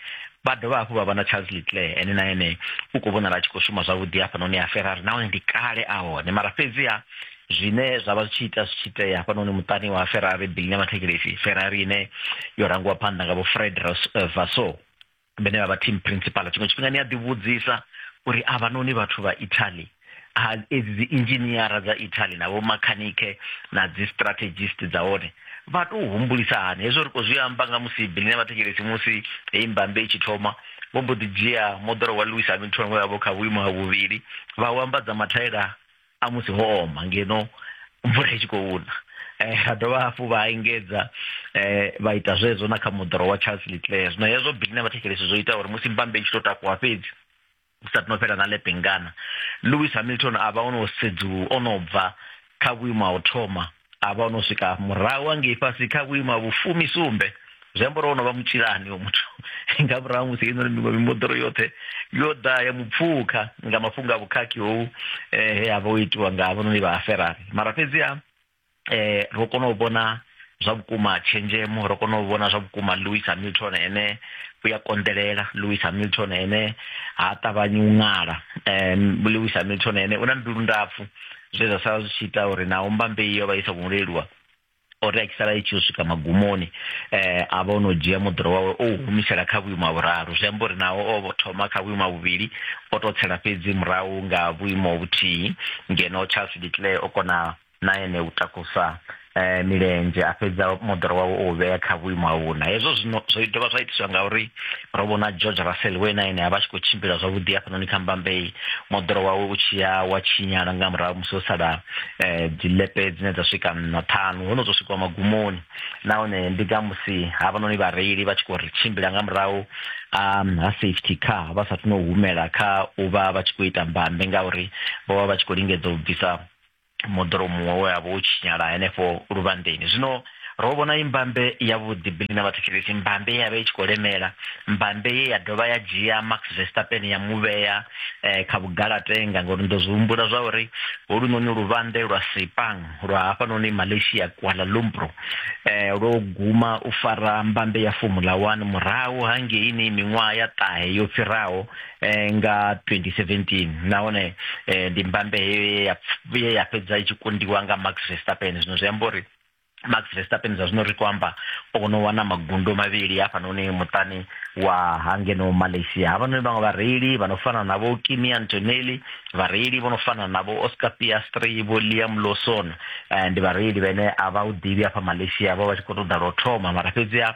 Vha dovha hafhu vha vha na Charles Leclerc ene na ene u khou vhonala a tshi khou shuma zwavhuḓi hafhanoni ha Ferrari nahone ndi kale a hone mara fhedziha zwine zwa vha zwi tshi ita zwi tshi itea hafhanoni muṱani wa ferrari bilina mathekelefi ferrari ine yo rangiwa phanḓa nga vho fred eh, vaso vhene vha vha team principal tshiṅwe tshifhinga ni a ḓivhudzisa uri a vhanoni vhathu vha italy edzi dzi inzhiniara dza italy na vhomakhanike na dzi strategist dza hone vha tou humbulisa hani hezwo ri khou zwi amba nga musi bilina mathekelefi musi heyi mbambe i tshi thoma vho mbo ḓi dzhia moḓoro wa louis hamilton we vha vho kha vhuimo ha vhuvhili vha u ambadza mathaela a musi ho oma ngeno mvula i tshi khou una eh, ha dovha hafhu vha engedza eh, vha ita zwezwo na kha moḓoro wa charles leclair zwino hezwo bili na vhathetshelesi zwo ita uri musi mbambe i tshi tou takuwa fhedzi u sa tino fhela na lepengana lewis hamilton a vha o no sedzu o no bva kha vhuimo ha u thoma a vha o no swika murahu hangei fhasi kha vhuimo ha vhufumi sumbe zwi amba uri o no vha mutshilani o muthu nga murahu musi ino mimoḓoro yoṱhe yo ḓa ya mupfukha nga mafhungo a vhukhakhi hou eh, he a vha o itiwa nga havhanoni vha aferari mara fhedziha um eh, ro kona u vhona zwa vhukuma tshenzhemo ro kona u vhona zwa vhukuma louis hamilton ene u ya konḓelela louis hamilton ene ha ṱavhanyi u ṅala um louis hamilton ene u na mbilu ndapfu zwe zwa sala zwi tshi ita uri naho mbambeyi yo vha i sa khou leluwa o ri a tshi sala i tshi yo swika magumoni eh a vha o no dzhia moḓoro wawe o u humisela kha vhuimo ha vhuraru zwi amba uri naho o vho thoma kha vhuimo ha vhuvhili o to tsela fhedzi murahu nga vhuimo vhuthihi ngeno charles declare o kona na ene u takusa eh, milenzhe a fhedza moḓoro wawe o vhea kha vhuimo ha vhuna hezwo zwino zwo dovha zwa itiswa ngauri ro vhona george russell we na ene a vha tshi khou tshimbila zwavhuḓi hafhanoni kha mbambei moḓoro wawe u tshi ya wa tshinyala nga murahu musi ho sala eh, dzilepe dzine dza swika na ṱhanu ho no zwo swikwa magumoni nahone ndi nga musi havhanoni vhareili vha tshi khou ri tshimbila nga murahu um ha safety car vha sathu no humela kha u vha vha tshi khou ita mbambe ngauri vho vha vha tshi khou lingedza u bvisa moḓoro muṅwe we a vha u tshinyala henefho luvhanḓeni zwino ro vhona i mbambe yavhuḓi bili na vhathetshelesi mbambe ye ya vha i tshi khou lemela mbambe ye ya dovha ya dzhia max vestapen ya mu vhea eh, kha vhugalatenga ngori ndo zwi humbula zwa uri holunoni luvhanḓe lwa sipang lwa hafhanoni malaysia kuala lumpur eh, lwo guma u fara mbambe ya formula one murahu hangeini miṅwaha ya ṱahe yo fhiraho eh, nga 2017 nahone eh, ndi mbambe heyo ye ya fhedza i tshi kundiwa nga max verstappen zwino zwi amba uri max verstappen zwa zwino ri khou amba o no wana magundo mavhili hafhanoni muṱani wa hangeno malaysia havhanoni vhaṅwe vhareili vha no fana na vho kimi antonelli vhareili vho no fana na vho oscar piastri vho liam lawson eh, ndi vhareili vhene a vha u ḓivhi hafha malaysia vha vha tshi khou ṱoḓa lwo thoma mara fhedziha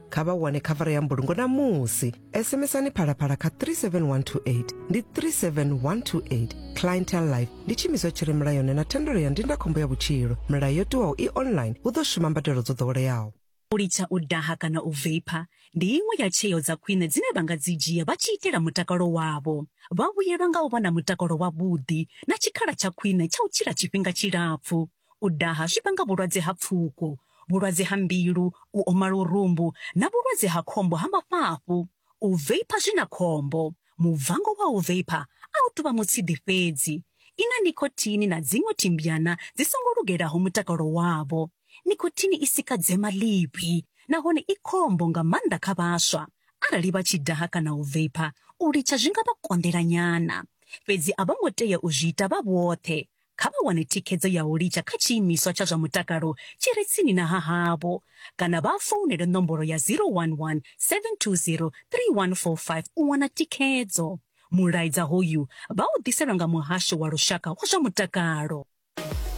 kha vha wane khavara ya mbulungo namusi sms-ani phalaphala kha 37128 ndi 37128 clientel life ndi tshiimiswa tshi re mulayoni na thendelo ya ndindakhombo ya vhutshilo milayo yo tiwaho i online hu ḓo shuma mbadelo dzo ḓoweleaho u litsha u daha kana u veipha ndi iṅwe ya tsheo dza khwine dzine vha nga dzi dzhia vha tshi itela mutakalo wavho vha vhuyelwa nga u vha na mutakalo wavhuḓi na tshikhala tsha khwine tsha u tshila tshifhinga tshilapfu U daha zwi vhanga vhulwadze ha pfuko, vhulwadze ha mbilu, u oma lurumbu na vhulwadze ha khombo ha mafhafhu. U veipha zwi na khombo. Mubvango wa u veipha a u tou vha mutshidi fhedzi. I na nikhothini na dziṅwe thimbyana dzi songo lugelaho mutakalo wavho. Nikhothini i sika dzema ḽivhi nahone i khombo nga maanḓa kha vhaswa. Arali vha tshi daha kana u veipha, u litsha zwi nga vha konḓela nyana. Fhedzi a vho ngo tea u zwi ita vha vhoṱhe. Kha vha wane thikhedzo ya u litsha kha tshiimiswa tsha zwa mutakalo tshi re tsini na ha havho kana vha founele nomboro ya 011 720 3145 u wana thikhedzo. Mulaedza hoyu vha u ḓiselwa nga Muhasho wa Lushaka wa zwa Mutakalo.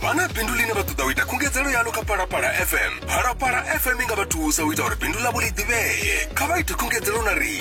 Vha na bindu ḽine vha ṱoḓa u ita khungedzelo yaḽo kha Phalaphala FM? Phalaphala FM i nga vha thusa u ita uri bindu ḽavho ḽi ḓivhee. Kha vha ite khungedzelo na riṋe.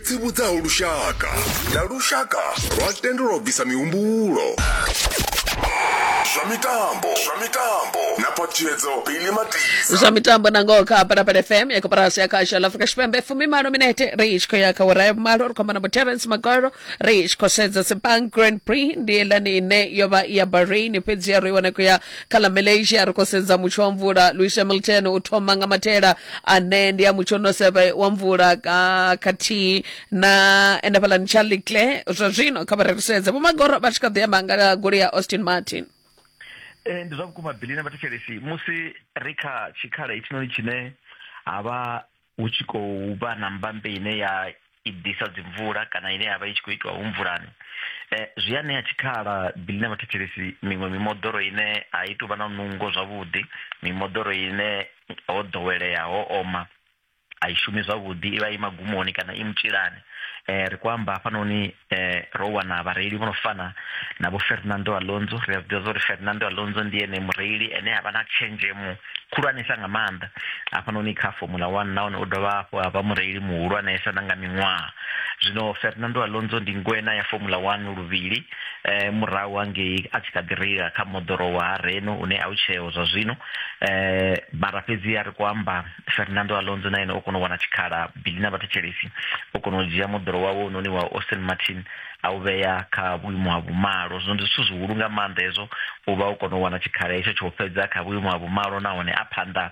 tsivhudzaho lushaka na lushaka lwa tendelwa u bvisa mihumbulo zwa mitambo zwa mitambo na phaṱhutshedzo bili matisa zwa mitambo na ngoho kha parapara fm ya koporasi ya khasho la afrika tshipembe fumimalo minete ri tshi khou ya kha ura ya vhumalo ri khou amba na boterence magoro ri tshi khou sedza sepang grand prix ndi yelani ine yo vha ya bahrain fhedzi ya ro i wana khou ya Kha ḽa Malaysia ri khou sedza mutsho wa mvula. Louis Hamilton u thoma nga mathela ane ndi a mutsho no seve wa mvula ka- khathihi na ende fhaḽani Charlie Claire zwa zwino kha vha ri ri sedze Vho Magoro vha tshi kha ḓi amba nga goloi ya Austin Martin. Ee, ndi zwa vhukuma Billy na vhathetshelesi musi ri kha tshikhala hetshinoni tshine ha vha hu tshi khou vha na mbambe ine ya i ḓisa dzimvula kana ine yavha i tshi khou itiwa hu mvulani eh, zwi a ṋea tshikhala bili na vhathetshelesi miṅwe mimoḓoro ine a i tuvha na nungo zwavhuḓi mimoḓoro ine ho ḓowelea ho oma a i shumi zwavhuḓi i vha i magumoni kana i mutshilani um ri khou amba hafhanoni eh, ro wana vhareili vho no fana na vho fernando alonso ri a zwiḓivha zwa uri fernando alonso ndi ene mureili ene a vha na tshenzhemo khulwanesa nga maanḓa hafhanoni kha formula one nahone u dovha hafhu a vha mureili muhulwanesa na nga miṅwaha zwino fernando alonso ndi ngwena ya formula one luvhili eh, murahu hangei a tshi kha ḓi reila kha moḓoro wa reno une a u tsheo zwa zwino eh, mara fhedzi a ri kho amba fernando alonso na ene o kona u wana tshikhala Billy na vhathetshelesi vho kona u dzhia moḓoro wawe unoni wa Austin Martin a u vhea kha vhuimo ha vhumalo. Zwino ndi zwithu zwihulu nga maanḓa hezwo, u vha u kona u wana tshikhala hetsho tsho fhedza kha vhuimo ha vhumalo nahone a phanḓa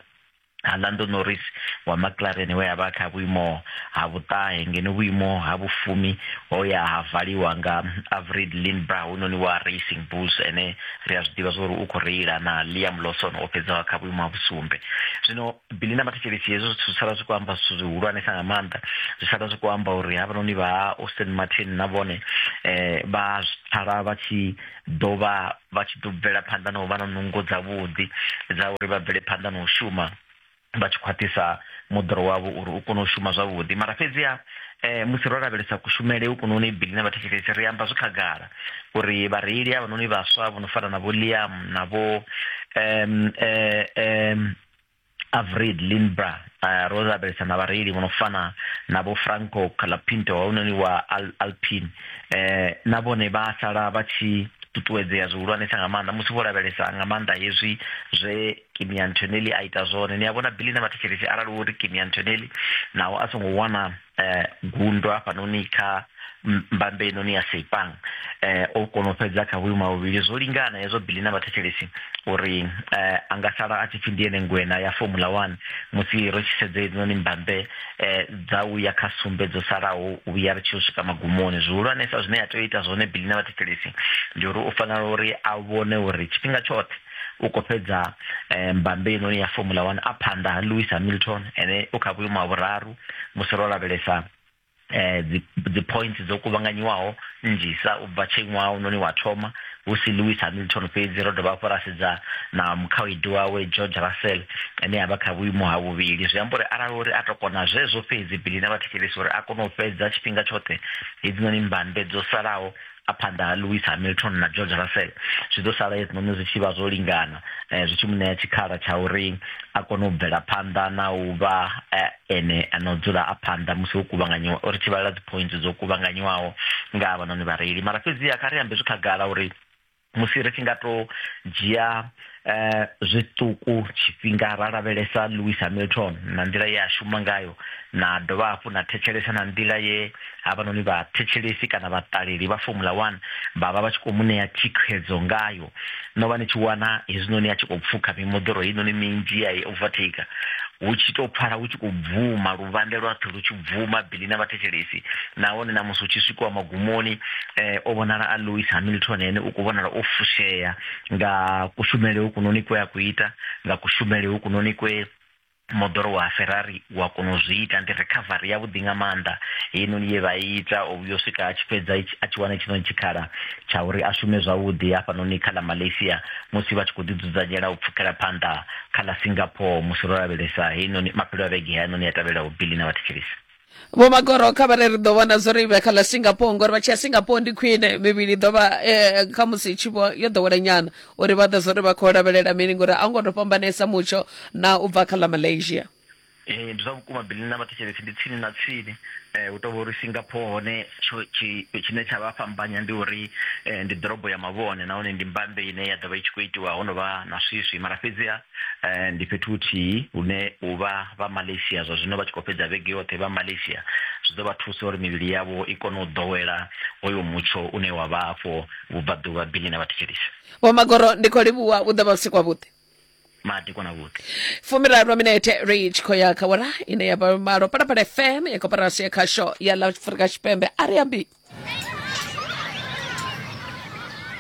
ha Lando Norris wa McLaren we a vha kha vhuimo ha vhuṱahe ngeno vhuimo ha vhufumi ho ya ha valiwa nga Avrid Lindbra hunoni wa Racing Bulls ene ri a zwi ḓivha zwori u khou reila na Liam Lawson o fhedzaho kha vhuimo ha vhusumbe. Zwino bili na mathetshelesi hezwo zwithu zwi sala zwi khou amba zwithu zwihulwanesa nga maanḓa zwi sala zwi khou amba uri havhanoni vha austin martin na vhone um vha pfala vha tshi ḓo vha vha tshi ḓo bvela phanḓa na u vha na nungo dzavhuḓi dza uri vha bvele phanḓa na u shuma vha tshi khwaṱhisa moḓoro wavho uri u kone u shuma zwavhuḓi mara fhedziha um musi ro lavhelesa kushumele ukunoni bili na vhathetshelesi ri amba zwi khagala uri vhareili havhanoni vhaswa vho no fana na vho liam na vho um um Avrid Lindbra uh, ro lavhelesa na vhareili vho no fana na vho Franco Calapinto hounoni wa Al Alpine eh, na vhone vha sala vha tshi ṱuṱuwedzea zwihulwanesa nga maanḓa musi vho lavhelesa nga maanḓa hezwi zwe Kimi Antonelli a ita zwone ni a vhona Billy na vhathetshelesi arali wo ri Kimi Antonelli naho a songo wana eh, gundo hafhanoni kha mbambe inoni ya seipang eh, o kona u fhedza kha vhuimo ha vhuvhili zwo lingana hezwo bili na vhathetshelesi uri eh, a nga sala a tshi pfi ndi ene ngwena ya formula one musi ri tshi sedze inoni mbambe eh, dza u ya kha sumbe dzo salaho u vhuya ri tshi u swika magumoni zwihulwanesa zwine ya tea u ita zwone bili na vhathetshelesi ndi uri u fanela uri a vhone uri tshifhinga tshoṱhe u khou fhedza eh, mbambe inoni ya formula one a phanḓa ha lewis hamilton ene u kha vhuimo ha vhuraru musi ro lavhelesa eh dzi dzi points dzo kuvhanganyiwaho nnzhisa u bva tshe ṅwaha unoni wa thoma hu si Lewis Hamilton fhedzi ro dovha hafhu ra sedza na mukhaedu wawe George Russell ane a vha kha vhuimo ha vhuvhili zwi amba uri arali uri a to kona zwezwo fhedzi bili na vhathetshelesi uri a kone u fhedza tshifhinga tshoṱhe hedzinoni mbambe dzo salaho a phanḓa ha Lewis Hamilton na George Russell zwi ḓo sala hezwinoni zwi tshi vha zwo lingana eh, zwi tshi mu ṋea tshikhala tsha uri a kone u bvela phanḓa na u vha eh, ene ana u dzula a phanḓa musi ho kuvhanganyiwa uri tshi vhalela dzi points dzo kuvhanganyiwaho nga havhanoni vhareili mara fhedziha kha ri ambe zwi khagala uri musi ri tshi nga to dzhia eh, zwiṱuku tshifhinga ra lavhelesa louis hamilton na nḓila ye a shuma ngayo na dovha hafhu na thetshelesa na nḓila ye havhanoni vhathetshelesi kana vhaṱaleli vha formula one vha vha vha tshi khou mu ṋea thikhedzo ngayo no vha ni tshi wana hezwinoni a tshi khou pfukha mimoḓoro heinoni minzhi ya i overtaker hu tshi to pfala hu tshi khou bvuma luvhande lwaṱhe lu tshi bvuma bili na vhathetshelesi nahone na musi hu tshi swikiwa magumoni um o vhonala a louis hamilton ene u khou vhonala o fushea nga kushumele hukunoni kwe a ku ita nga kushumele hukunoni kwe moḓoro wa ferrari wa kona u zwi ita ndi recovery yavhuḓi nga maanḓa heinoni ye vha i ita u vhuya u swika a tshi fhedza itshi- a tshi wana itshinoni tshikhala tsha uri a shume zwavhuḓi hafhanoni kha ḽa malaysia musi vha tshi khou ḓidzudzanyela u pfukela phanḓa kha ḽa singapore musi ro lavhelesa heinoni maphelo a vhege heinoni ya tevhelaho bili na vhathetshelesi vho magoro kha vhare ri ḓo vhona zwo ri vhe kha ḽa singapore ngori vha tshi ya singapore ndi khwine mivhili ḓo vha eh, kha musi i tshi vho yo ḓowela nyana uri vha ḓe zwo ri vha khou lavhelela mini ngori a u ngo to fhambanesa mutsho na u bva kha ḽa malaysia Eh, ndi zwa vhukuma bili na vhathetshelesi ndi tsini na tsini eh, hu tovha uri singapore hone tsho- tshi- tshine tsha vha fhambanya ndi uri eh, ndi ḓorobo ya mavhone nahone ndi mbambe ine ya ḓovha i tshi khou itiwa ho no vha na swiswi mara fhedziha eh, ndi fhethu huthihi hune u vha vha malaysia zwa zwino vha tshi khou fhedza vhege yoṱhe vha malaysia zwi ḓo vha thusa uri mivhili yavho i kone u ḓowela hoyo mutsho une wa vha afho vhubvaḓuvha bili na vhathetshelisi vho magoro ndi khou livhuwa u ḓo vha vhusiku havhuḓi madi kona vhuḓi fumiraru minete ri tshi khou ya kha wara ine ya vha malo palapala fm ya koporasi ya khasho ya la afrika tshipembe a ri ambi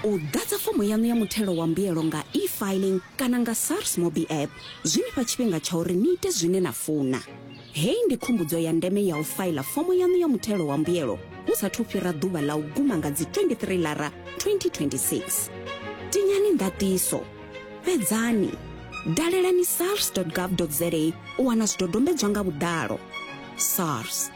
u ḓadza fomo yaṋu ya muthelo wa mbuyelo nga e-filing kana nga sars mobi app zwi ni fha tshifhinga tsha uri ni ite zwine na funa hei ndi khumbudzo ya ndeme ya u faila fomo yaṋu ya muthelo wa mbuyelo hu sathu fhira ḓuvha ḽa u guma nga dzi 23 lara 2026 tinyani ndatiso fhedzani dalelani sars gov za u wana zwidodombedzwa nga vhuḓalo sars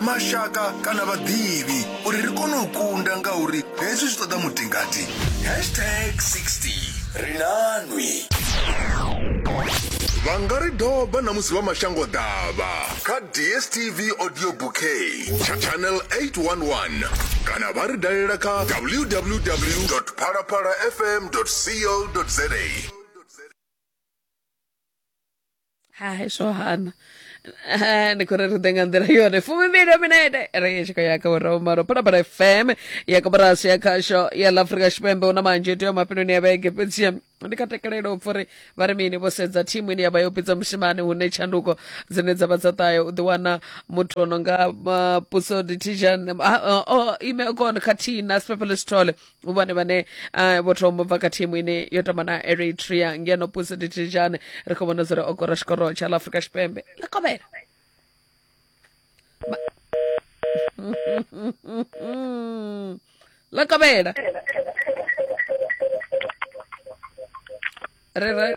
mashaka kana vhaḓivhi uri ri kone u kunda ngauri hezwi zwi ṱoḓa mutingati hashtag 60 ri na nwi vha nga ri doba na musi vha mashango ḓavha kha dstv audio bouquet tsha channel 811 kana vha ri dalela kha www phalaphalafm co za hai zwo hana Eh, ndi khou ri ri ḓe nga nḓila yone fumimbili ya minete ri i tshi khou ya kha vhuraumalo phalaphala fm ya koporasi ya khasho ya ḽa afrika tshipembe hu na manzhi tea mafheloni ya vhege fhedzi ndi kha tekelelo u pfa uri vha ri mini vho sedza thimu ine ya vha yo pfidza mushimani hune tshanduko dzine dza vha dza ṱahe u ḓiwana muthu o no nga uh, puso ditijan uh, uh, ime kon khathihi na sipepele sithole u vhone vhane ah, vho thoma u bva kha thimu ine yo tamba na eritrea ngeno puso ditijane ri khou vhona zwo ri o kora tshikoro tsha ḽa afrika tshipembe ḽa kovhela Ma- ḽa kovhela re re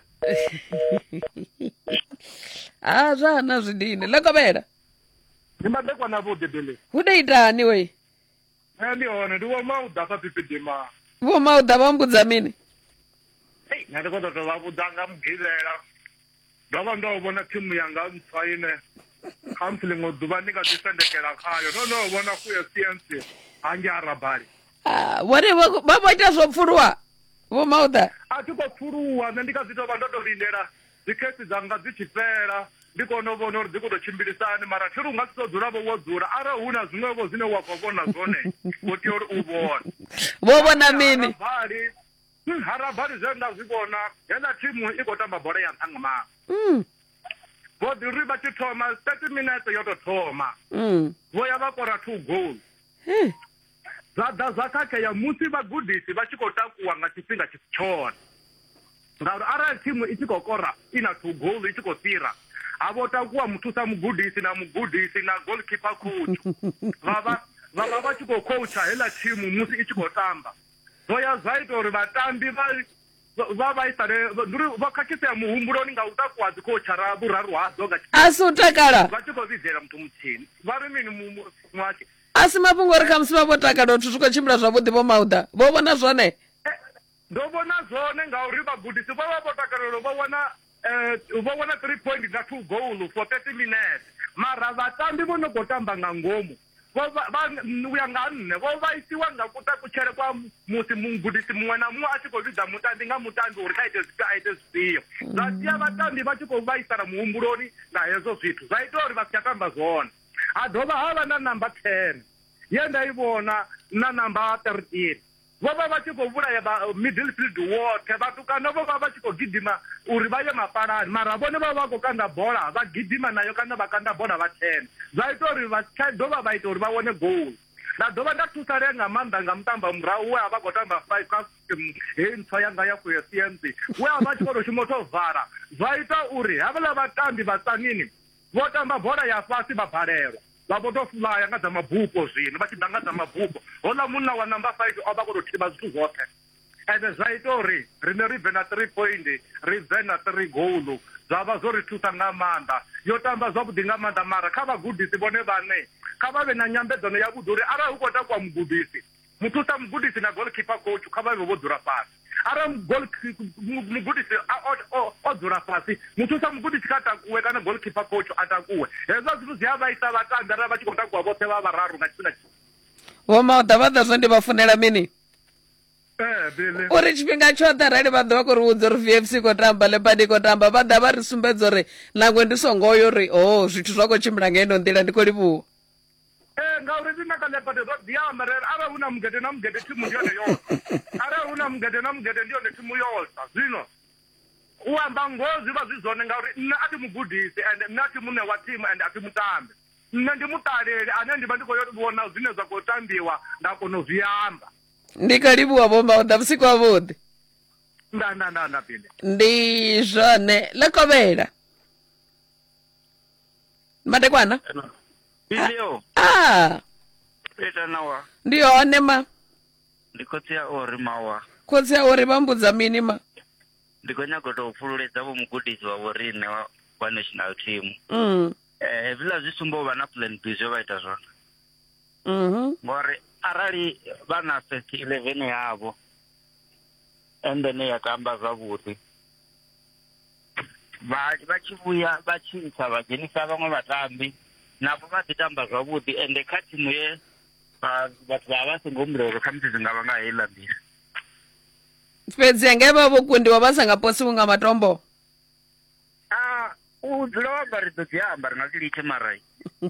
ha zwa hana zwidini ḽa kovhela ndi madekwana vho debele hu ḓo itani wei nṋe ndi hone ndi vho mauḓa fha pipidima vho mauḓa vha mbudza mini ei nṋe ndi khou ṱoḓa vha vhudza nga mugivhela ndo vha ndo vhona thimu yanga ntswa ine khamusi ḽiṅwe ḓuvha ndi nga ḓi sendekela khayo no no vhona kuya siensi hange arabali ah, vhone vha vho ita zwo pfuluwa vho mauḓa a thi khou pfuluwa nṋe ndi kha dzi tou vha ndo tou lindela dzikhesi dzanga dzi tshi fhela ndi kone u vhona uri dzi khou tou tshimbilisani mara thi ri u nga si tou dzula vho wo dzula arali hu na zwiṅwevho zwine wa khou vhona zwone wo tea uri u vhone vho vhona mini harabali hmm, harabali zwe nda zwi vhona heḽa thimu i khou tamba bola ya nṱha nga maanḓa hmm. vho ḓi ri vha tshi thoma thirty minutes yo tou thoma hmm. vho ya vha kora two goal Zwa ḓa zwa khakhea musi vhagudisi vha tshi khou takuwa nga tshifhinga tshi si tshone ngauri arali thimu i tshi khou kora i na two goal i tshi khou fhira ha vho takuwa muthusa mugudisi na mugudisi na goalkeeper coach vha vha vha vha vha tshi khou coacha heiḽa thimu musi i tshi khou tamba zwo ya zwa ita uri vhatambi vha vha vhaisale ndi uri vha khakhisea muhumbuloni nga u takuwa dzi khou tshara vhuraru hadzo nga a si u takala vha tshi khou vhidzela muthu muthihi vha ri mini muhasho A si mafhungo uri khamusi vha vho takala zwithu zwi khou tshimbila zwavhuḓi vho Mauda. Vho vhona zwone? Ndo vhona zwone ngauri vhagudisi vho vha vho takalela vho wana vho wana 3 point nga 2 goal for 30 minutes mara vhatambi vho no khou tamba nga ngomu vho vha u ya nga nṋe vho vhaisiwa nga kutakutshele kwa musi mugudisi muṅwe na muṅwe a tshi khou vhidza mutambi nga mutambi uri kha ite zwifhio a ite zwifhio zwa sia vhatambi vha tshi khou vhaisala muhumbuloni nga hezwo zwithu zwa ita uri vha si tsha tamba zwone Ha dovha ha vha na namba 10 ye nda i vhona na namba 13. Vho vha vha tshi khou vhulaya vha Middelfield woṱhe. Vhatukana vho vha vha tshi khou gidima uri vha ye mapalani, mara vhone vha vha vha khou kanda bola vha gidima nayo kana vha kanda bola vha thena. Zwa ita uri vha si tsha dovha vha ita uri vha wane goal. Nda dovha nda thusalea nga maanḓa nga mutambo wa murahu we a vha khou tamba five kha system heyi ntswa yanga ya Fuesiense, we a vha a tshi khou tou shuma u tou vala. Zwa ita uri havhala vhatambi vha Tzaneen Vho tamba bola ya fhasi vha balelwa, vha vho tou fulaya nga dza mabupo zwino vha tshi ḓa nga dza mabupo. Houḽa munna wa number five o vha a khou tou thivha zwithu zwoṱhe ende zwa ita uri riṋe ri bve na three point, ri bve na three goal. Zwa vha zwo ri thusa nga maanḓa. Yo tamba zwavhuḓi nga maanḓa mara kha vhagudisi vhone vhaṋe kha vha vhe na nyambedzano yavhuḓi uri arali hu khou takuwa mugudisi Muthusa mugudisi na goalkeeper coach kha vha vhe vho dzula fhasi. Arali goal mugudisi a o o o dzula fhasi, muthusa mugudisi kha takuwe kana goalkeeper coach a takuwe. Hezwo zwithu zwi a vhaisa vhatambi arali vha tshi khou takuwa vhoṱhe vha vhararu nga tshifhinga tshi. Vho Maḓavhaḓa zwe ndi vha funela mini? Eh, uri tshifhinga tshoṱhe arali vha ḓo vha khou ri vhudza uri vfc i khou tamba lepadi i khou tamba vha ḓa vha ri sumbedza uri nangwe ndi songo yo uri o oh, zwithu zwa khou tshimbila nga ino nḓila ndi khou livhuwa ee ngauri riṋe kha ḽephate ro ḓi amba rere arali hu na mugede na mugede thimu ndi yone yotha arali hu na mugede na mugede ndi yone thimu yotha zwino u amba ngoho zwi vha zwi zwone ngauri nṋe a thi mugudisi ende nṋe a thi muṋe wa thimu ende a thi mutambi nṋe ndi muṱaleli ane ndi vha ndi khou yo vhona zwine zwa khou tambiwa nda kona u zwi amba ndi kha livhuwa vhomba u ḓa vhusiku ha vhuḓi nda nda nda nda pinde ndi zwone ḽa kovhela madekwana Bilio, ah peta nawa. ndi hone ma Ndikhotsiya ori mawa. khotsi a uri vha mbudza mini ma Ndi khou nyaga u tou pfululedza vho mugudisi wa vhoriṋe wa, wa national team. mm. Eh, hezwiḽa zwi sumba u vha na plan B zwe vha ita zwone. mhm Ngori arali vha na first 11 yavho and then ya tamba zwavhuḓi. vha vha tshi vhuya vha tshi ntsha vha dzhenisa vhaṅwe vhatambi navho vha ḓi tamba zwavhuḓi ende kha thimu ye vhathu vha vha vha songo humbula uri khamusi zwi nga vha nga heiḽa nḓila fhedzi anga vha vho kundiwa vha sa nga posiwi nga matombo a u dzula wa ambara ḓo dzi amba ri nga zwi litshe mara um